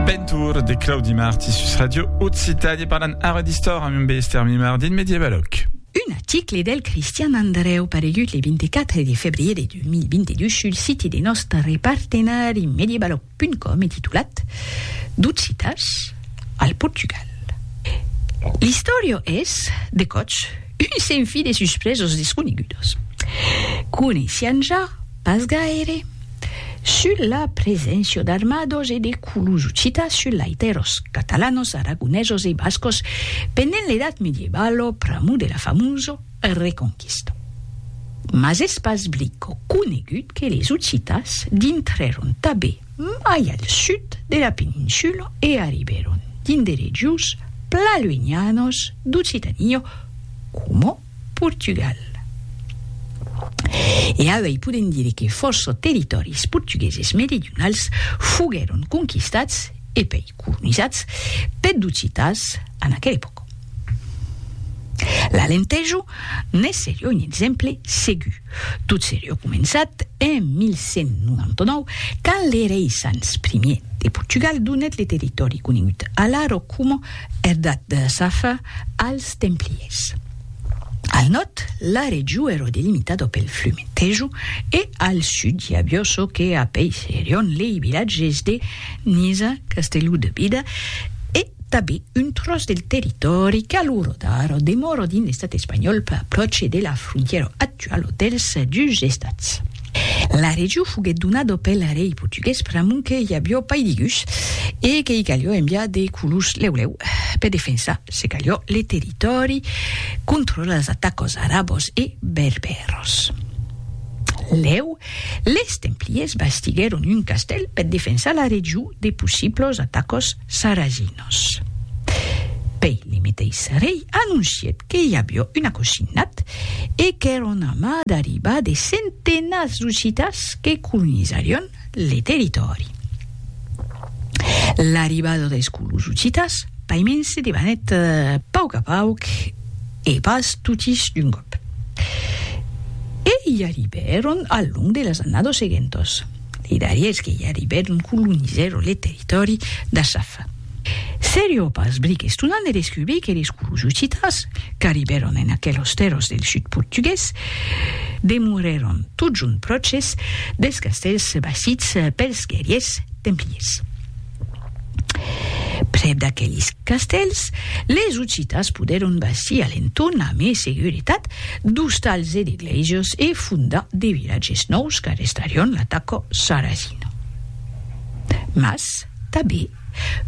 Bentour de Claudi Marti sus Radio Occitanie parlant ara d'istor amb un bester mimardin medievaloc. Un article del Cristian Andreu paregut le 24 de febrier de 2022 sul siti de nòstre partenari medievaloc.com e titulat D'occitas al Portugal, l'istòria es, de còps, un senfi de suspresas desconegudas. Coneissián ja pas gaire. Sus la preséncia d'armados e de culus occitas sus laiteros catalanos, aragonesos e bascos pendent l'Edat Medievalo pr'amor de la famosa Reconquista. Mas es pas blico conegut que les occitas dintrèron tabé mai al sud de la peninsula e arribèron dins de regions pla luenhanos d'Occitania coma, Portugal. E auei podem dire que fòrça territòris portugueses meridionals foguèron conquistats e pei colonizats peth d'occitans en aquera epòca. L'Alentejo ne serie un exemple segur, tot serie començat en 1199 quand le rei Sanç Ier de Portugal donèt le territòri conegut alara coma Herdad de Safa als templiers. Al nòrd, la region èra delimitada pel flume Tejo e al sud i aviá çò que apeisserion lei vilatges de Niza, Castelló de Bida e tanben un tròç del territòri qu'aluro d'ara demòra dins l'estat espanhòl pròche de la frontièra actuala dels dus estats. La region foguèt donada pel rei portugués pr'amont que i avió pas de gus e que i calió enviar de colons lèu lèu per defensar, se calió, le territòri contra las atacas arabas e berbèras. Lèu, les templiers bastiguèron un castèl per defensar la region de possiblas atacas Saraginos. Pei limitei Sarei anoncièt que i avió un acosinat e qu'èra un amas d'arribar de centenats d'occitans que colonizarion le territòri. L'arribada deis colons occitans paiments se debanèt pauc a pauc e pas totis d'un còp. E i arribèron al long de las annados seguentos. Li darriers que i arribèron colonizèron le territòri d'Asaf. Serio pas bric estonant de descubrir que les colons occitans qu'arribèron en aquelos tèrras del sud portugués demorèron totjorn pròches dels castèls bastits pels guerriers templiers. Prèp d'aquelis castèls, les Occitas podèron bastir a l'entorn a mai seguretat d'ostals e de glèisias e fondar de vilatges nòus qu'arrestarián l'ataca sarrasina. Mas, tanben,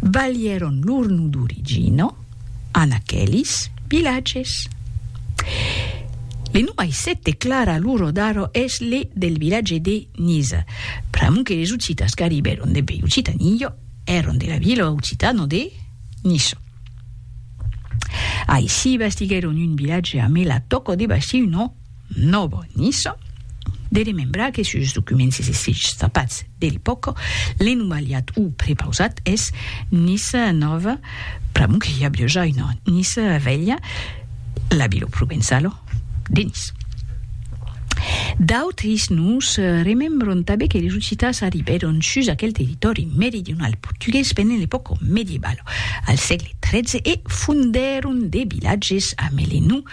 balhèron lor nom d'origina, en aquelis vilatges. Le nom aisset de Clara Luro d'Aro es le del vilatge de Niza, pr'amor que les occitas qu'arribèron dempuèi Occitanillo èron de la vila occitana de Niso. Aicí bastiguèron un vilatge amé la tòca de bastir un nom Novo Niso, de remembrar que sus documents escrichs trapats de l'epòca, l'enumaliat o prepausat es Nice Nova, pr'amor que i a biaja una Nice Velha, la vila provençala de Nice. D'autres nos remembran tanben que les ocitans arribèron sus aquel territòri meridional portugués pendent l'epòca medievala, al sègle XIII, e fondèron de vilatges amé le nom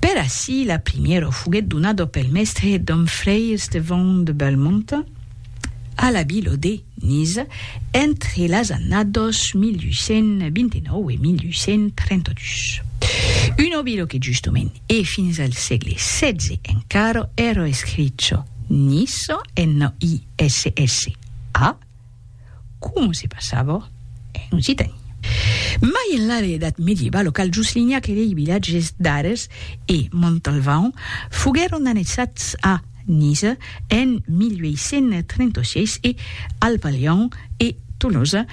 Per ací la primièra foguèt donada pel mèstre dom fraire Estevon de Belmonte a la vila de Niza entre las annadas 1829 e 1832. Una vila que justament e fins al sègle xvi encara èra escricha Nissa, N-I-S-S-A, Como se passava en occitan. Mai enlà de l'edat medieva, lo cal Juslinhac e lei vilatges d'Ares e Montalvan foguèron annexats a Niza en 1836 e al Palhon e Tolosa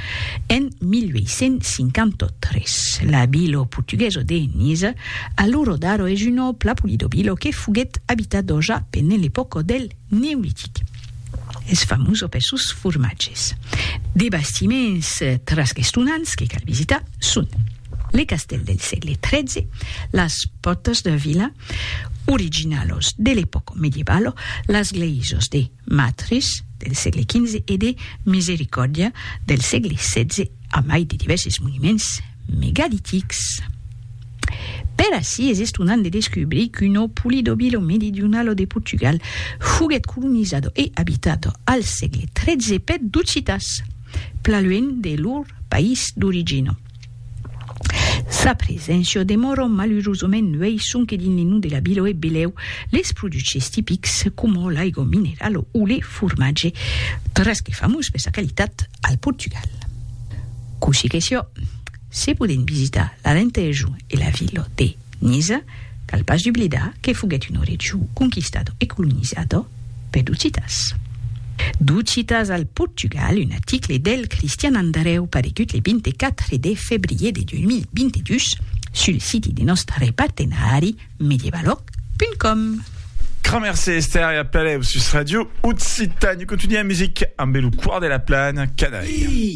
en 1853. La vila portuguesa de Niza, a l'ora d'ara es una plapolidobila que foguèt abitada ja pendent l'epòca del. Neolitic. Es famós per sos formatges. De bastiments trasgestonants que cal visitar son le castèl del sègle XIII, las pòrtas de vila, originalos de l'epòca medievalo, las glèisas de Matris del sègle XV e de Misericòrdia del sègle XVI, a mai de divèrses monuments megalitics. Per ací es estonant de descubrir qu'uno Pulidobillo meridionalo de Portugal foguèt colonizado e abitado al sègle XIII per d'occitans, plaluènh de lor país d'origina. Sa preséncia o demora malurosament nuèi sonque dins li nus de la vila e belèu les produches tipics coma l'aigo mineralo o le formatge, tres que famós per sa qualitat al Portugal. Cossí que siá, Se podèm visitar l'Alentejo e la vila de Niza, cal pas doblidar que foguèt un orètjo conquistado e colonizado pes Docitas. Docitas al Portugal, un aticle del Cristian Andareu paregut le 24 de febrier de 2022 sul siti de nòstre partenari medievaloc.com. Grand merci Esther e a plaer sus Radio Occitània. Continuam music ambe lo Quart de la Plana, Canaille.